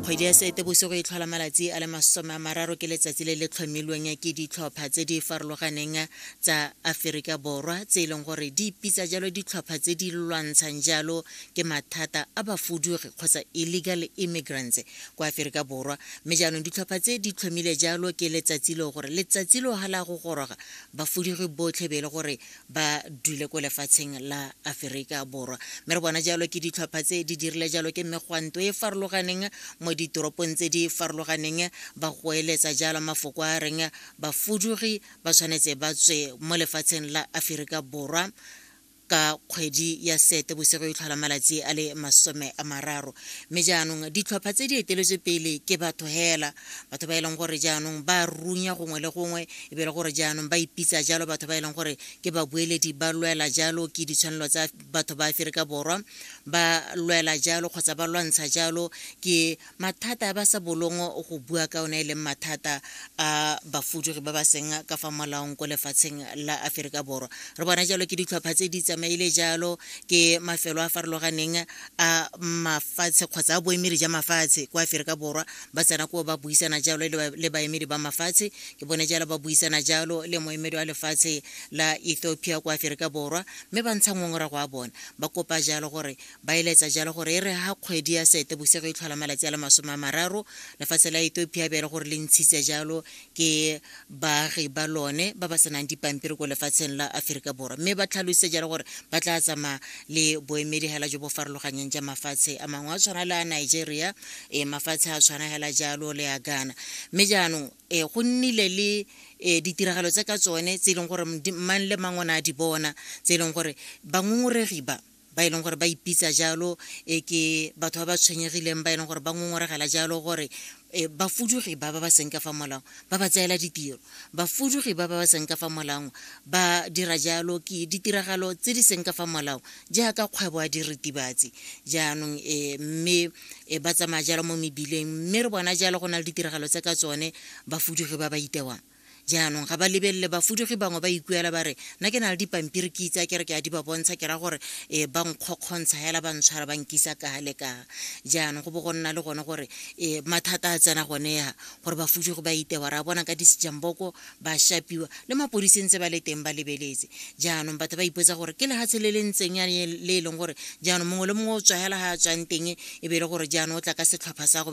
kgwedi ya seetebosigo e tlhola malatsi a le masome a mararo ke letsatsi le le tlhomilweng ke ditlhopha tse di farologaneng tsa aforika borwa tse e leng gore di ipitsa jalo ditlhopha tse di lwantshang jalo ke mathata a bafudugi kgotsa illegal immigrants kwa aforika borwa mme jaanong ditlhopha tse di tlhomile jalo ke letsatsi leo gore letsatsi leo ga la go goroga bafudugi botlhe be e le gore ba dule ko lefatsheng la aferika borwa mme re bona jalo ke ditlhopha tse di dirile jalo ke megwanto e farologaneng mo ditoropong tse di farologaneng ba goeletsa jalo mafoko a reng bafudugi ba tshwanetse ba tswe mo lefatsheng la aferika borwa ka kgwedi ya sete bosigo e tlhola malatsi a le masome a mararo mme jaanong ditlhopha tse di eteletswe pele ke batho hela batho ba e leng gore jaanong ba runya gongwe le gongwe e be le gore jaanong ba ipitsa jalo batho ba e leng gore ke babueledi ba lwela jalo ke ditshwanelo tsa batho ba aferika borwa ba lwela jalo kgotsa ba lwantsha jalo ke mathata a ba sa bolong go bua ka one e leng mathata a bafudugi ba ba seng ka fa molaong ko lefatsheng la aferika borwa re bona jalo ke ditlhopha tse di tsamaile jalo ke mafelo a farologaneng a mafatshe kgotsa a boemedi ja mafatshe kwa aferika borwa ba tsena koo ba buisana jalo le baemedi ba mafatshe ke bone jalo ba buisana jalo le moemedi wa lefatshe la ethiopia kwa aferika borwa mme ba ntsha ngongorago a bona ba kopa jalo gore ba eletsa jalo gore e re ga kgwedi ya sete bosego e tlhola malatsi a le masome a mararo lefatshe la ethiopia be e le gore le ntshitse jalo ke baagi ba lone ba ba senang dipampiri ko lefatsheng la aforika borwa mme ba tlhalositse jalo gore ba tla tsamaya le boemedi hela jo bo farologanyeng ja mafatshe a mangwe a tshwana le a nigeria e mafatshe a tshwana hela jalo le a ghana mme jaanong e go nnile le e ditiragalo tse ka tsone tse e leng gore mang le mang o ne a di bona tse e leng gore bangongoregi ba ba e leng gore ba ipitsa jalo e ke batho ba ba tshwenyegileng ba e leng gore ba ngongoregela jalo gore e, bafudugi ba ba ba seng ka fa molao ba ba tseela ditiro bafudugi ba ba ba seng ka fa molao ba dira jalo ke ditiragalo tse di seng ka fa molao jaaka kgwebo ya diritibatsi jaanong e, mme e, ba tsamaya jalo mo mebileng mme re bona jalo go na le ditiragalo tse ka tsone bafudugi ba ba itewang jaanong ga ba lebelele bafudugi bangwe ba ikuela ba re nna ke na le dipampiri ke itse a kere ke a di ba bontsha ke ra gore um ba nkgokgontsha hela ba ntshwara ba nkisa kaga le kaga jaanong go bo go nna le gone gore um mathata a tsena gone ya gore bafudugi ba itewa ra bona ka disejamboko ba shapiwa le mapodisi ntse ba le teng ba lebeletse jaanong batho ba ipotsa gore ke lehatshe le le ntseng ya le e leng gore jaanong mongwe le mongwe o tswagela ga a tswang teng e be e le gore jaanong o tla ka setlhopha sa go